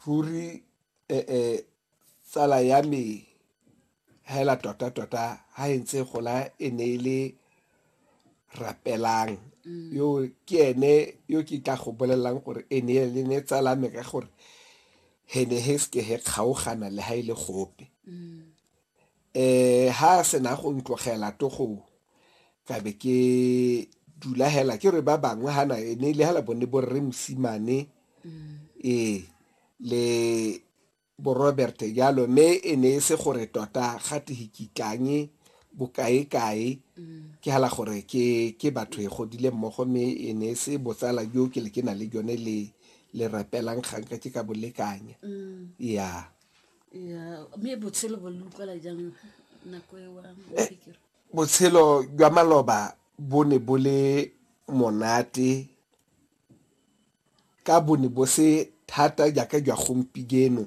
ruri eh, eh, tsala ya me hela tota-tota ha e ntse gola e ne e le rapelang mm. yo ke ene yo ke tla go bolelelang gore e ne le ne tsala me ka gore he ne he seke he kgaogana le ha e le gope mm. Eh, ha sena go ntlogela togong ka be ke dula hela ke re ba bangwe hana e ne le hela bone bo rre mosimane ee le bo robert jalo mme e ne e se gore tota ga tehikitlange bokae-kae ke hela gore ke ke batho e godile mmogo mme e ne e se botsala jo ke le ke na le jone le le rapelang ganka ke ka bolekanya ya Botshelo jwa maloba bo ne bo le monate ka bo ne bo se thata jaaka jwa gompieno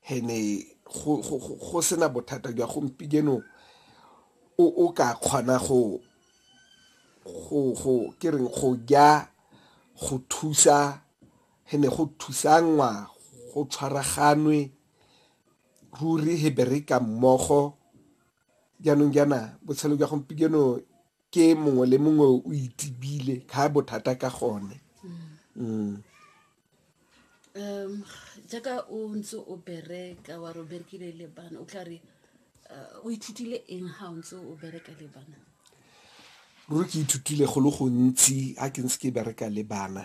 and-e go sena bothata jwa gompieno o ka kgona go ja go thusa. He ne go thusanngwa go tshwaraganwe ruri he bereka mmogo. Jaanong jaana botshelo jwa gompieno ke mongwe le mongwe o itibile ga bothata ka gone um jaaka o ntse o bereka wa re o berekile le bana o tla re uh, o ithutile eng ga o ntse o bereka le bana ruri ke ithutile go le gontsi a ke ntse ke bereka le bana